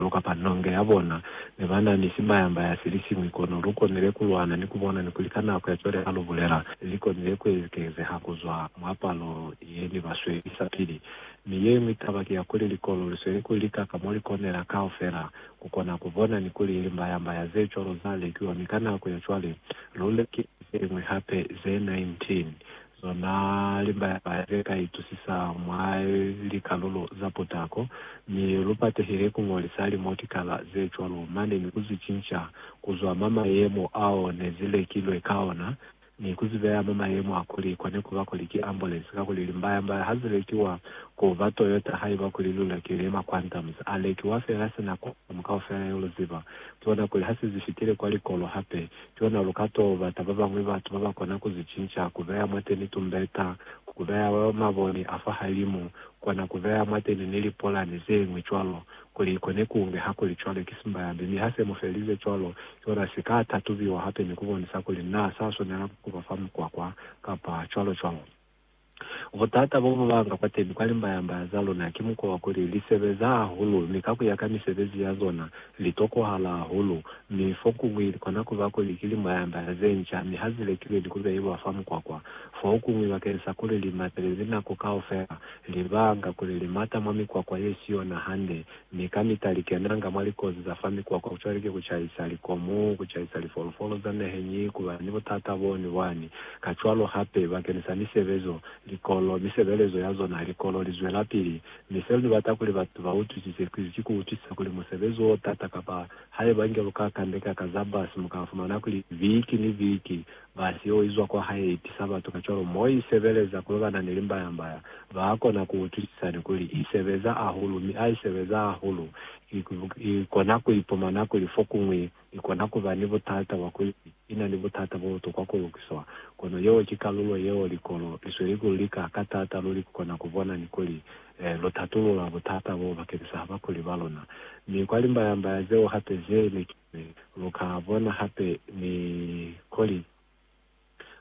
Lu kapa nonge ya bona. Ne ba na ni simbaya-mbaya se li siñwi, kono lu konile ku lwana ni ku bona ni kuli ka nako ya cwale ha lu bulela, li konile ku ekezeha ku zwa mwa palo ye ne ba swelisa pili. Mi ye ñwi taba ki ya kuli likolo li sweli ku lika ka mo li konela kaufela ku kona ku bona ni kuli limbaya-mbaya ze cwalo za lekiwa. Mi ka nako ya cwale, lu lekile ze ñwi hape, ze 19. Lona limbaya-baya ze ka itusisa mwa likalulo za putako, mi lu patehile ku ñolisa limotikala ze cwalo mane ni ku zi cinca ku zwa mwa mayemo ao ne zi lekilwe ka ona ni ku zi beya mwa mayemo a kuli kone ku ba kuli ki ambulensi, kakuli limbaya-mbaya ha zi lekiwa ku ba Toyota haiba kuli lu lekile mwa Quantum, za lekiwa fela sina Quantum kaufela yo lu ziba, ki ona kuli ha se zi fitile kwa likolo hape. Luna lu ka t'o bata ba bañwi batu ba ba kona ku zi cinca, ku beya mwateni tumbeta, ku beya maboni a fahalimu, kona ku beya mwateni ni lipolani ze ñwi cwalo, kuli i kone ku nge. Hakuli cwale, ki simbayambi. Mi ha se mu felize cwalo, yona si ka tatubiwa hape ni ku bonisa kuli naa sa swanela ku ba fa mukwakwa, kapa cwalo-cwalo. Butata bo bu banga kwateni kwa limbayambaya za luna ki mukwa wa kuli li sebeza hahulu mi ka ku ya ka misebezi ya zona, li tokohala hahulu, mi fokuñwi li kona ku ba kuli ki limbayambaya ze nca mi ha zi lekilwe ni ku behiwa fa mukwakwa. Fokuñwi bakeni sa kuli li matelezi nako kaufela, li banga kuli li mata mwa mikwakwa ye si yona hande Mi kamita likenanga mwa likozi za fa mikwakwa, kucwale ki kucaisa likomu, kucaisa lifolofolo za neheñi, kuba ni butata bo ni bwani. Kacwalo hape, bakeni sa misebezo, likolo, misebelezo ya zona ha likolo li zwelapili. Mi seo ni bata kuli batu ba utwisise kizi ki ku utwisisa kuli musebezi o tata, kapa haiba nge lu ka kandeka ka za bus, mu ka fumana kuli viki ni viki Basi yo izwa kwa hae i tisa batu, kacwalo mo i sebeleza ku lobana ni limbayambaya, ba kona ku utwisisa ni kuli i sebeza ahulu. Mi ha i sebeza hahulu, i kona ku ipumana kuli fokuñwi i kona ku ba ni butata bwa kuli i na ni butata bo butokwa ku lukiswa. Kono yeo ki kalulo yeo likolo li sweli ku lika ka taata luli ku kona ku bona ni kuli lu tatulula butata boo bakeñisa bakuli ba luna. Mi kwa limbayambaya zeo hape ze ne ki. Mi lu ka bona hape ni kuli,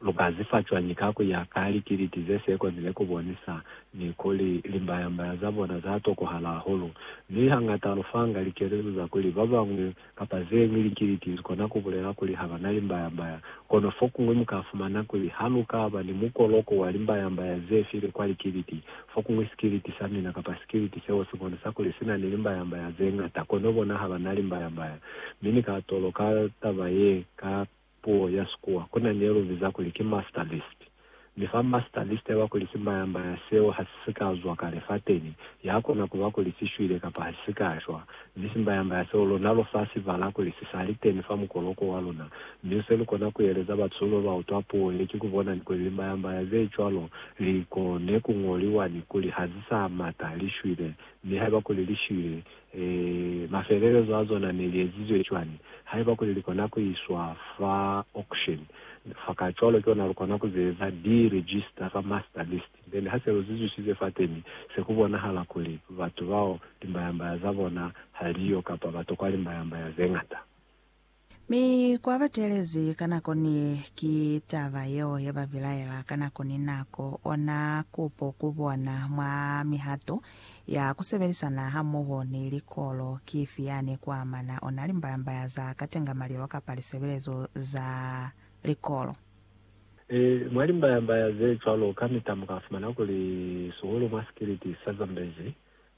lu ka zifa cwañi ka ku ya ka likiliti ze si ekonile ku bonisa ni kuli limbaya-mbaya za bona za tokohala hahulu. Mi hangata lu fanga likelezo za kuli ba bañwi kapa ze ñwi likiliti li kona ku bulela kuli ha ba na limbaya-mbaya. Kono fokuñwi mu ka fumana kuli ha lu ka ba ni mukoloko wa limbaya-mbaya ze file kwa likiliti, Fokuñwi sikiliti sa mina kapa sikiliti seo si bonisa kuli si na ni limbayambaya ze ñata, kono bona ha ba na limbayambaya. Mi ni ka toloka taba ye ka puo ya Sikuwa. Ku na ni ye lu biza kuli ki master list. Mi fa master list yaba kuli simbayambaya seo ha si si ka zwa kale fateni, ya kona ku ba kuli si shwile kapa ha si si ka shwa. Zisimbayambaya seo luna lu fa sibala kuli si sa li teni fa mukoloko wa luna. Mi se lu kona ku eleza batu ba ba utwa puo ye ki ku bona ni kuli limbayambaya ze cwalo li kone ku ñoliwa ni kuli ha zi sa mata, li shwile. Mi haiba kuli li shwile, ee, mafelelezo a zona ne li ezizwe cwañi? Haiba kuli li kona ku iswa fa auction, fa kacwalo ki ona lu kona ku ze eza, di register fa master list. Then ha se lu zuzwisize fateni, se ku bonahala kuli batu bao limbayambaya za bona ha li yo kapa ba tokwa limbayambaya ze ñata. Mi ku ba teelezi ka nako ni ye, ki taba yeo ye ba bilaela ka nako ni nako. Ona kupo ku bona mwa mihato ya ku sebelisana hamoho ni likolo ki ifi yani ku amana ona limbayambaya za katenga malilo kapa lisebelezo za likolo? Ee, mwa limbaya-mbaya ze cwalo, kamita mu ka fumana kuli sihulu mwa sikiliti sa Zambezi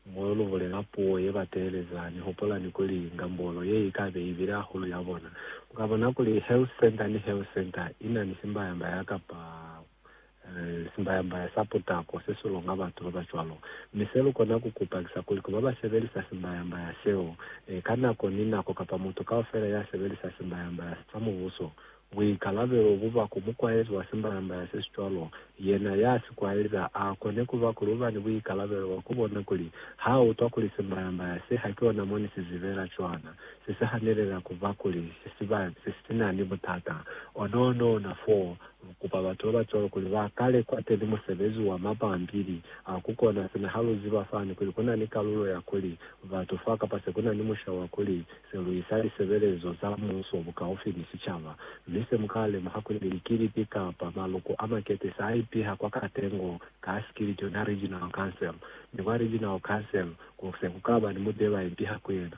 mo lu bulela puo ye ba teeleza. Ni hupulani kuli ngambolo ye i ka be i bile hahulu ya bona. Lu ka bona kuli health centre ni health centre i na ni simbaya-mbaya kapa simbaya-mbaya sa putako se si longa batu ba ba cwalo. Mi se lu kona ku kupa ki sa kuli ku ba ba sebelisa simbaya-mbaya seo, ee, ka nako ni nako kapa mutu kaufela ya sebelisa simbaya-mbaya sa Mubuso, Buikalabelo bu ba ku mukwaezi wa simbalambala se si cwalo. Yena ya si kwali za a kone ku ba kuli u ba ni buikalabelo bwa ku bona kuli ha a utwa kuli simbalambala se haki ona mo ni si zibela cwana, se si hanelela ku ba kuli si si ba se si na ni butata. Ona ona ona foo, lu kupa batu ba ba cwalo kuli ba kale kwateni musebezi wa mapampili a ku kona sina ha lu ziba fani kuli ku na ni kalulo ya kuli batu fa kapa se ku na ni musha wa kuli Se lu isa lisebelezo za Muso bukaufi ni sicaba, mi se mu ka lemuha kuli likilipi kapa maloko a makete sa ipiha kwa katengo ka sikili kyona Regional Council, mi kwa Regional Council ku se ku ka ba ni mut'e ba ipiha ku yena.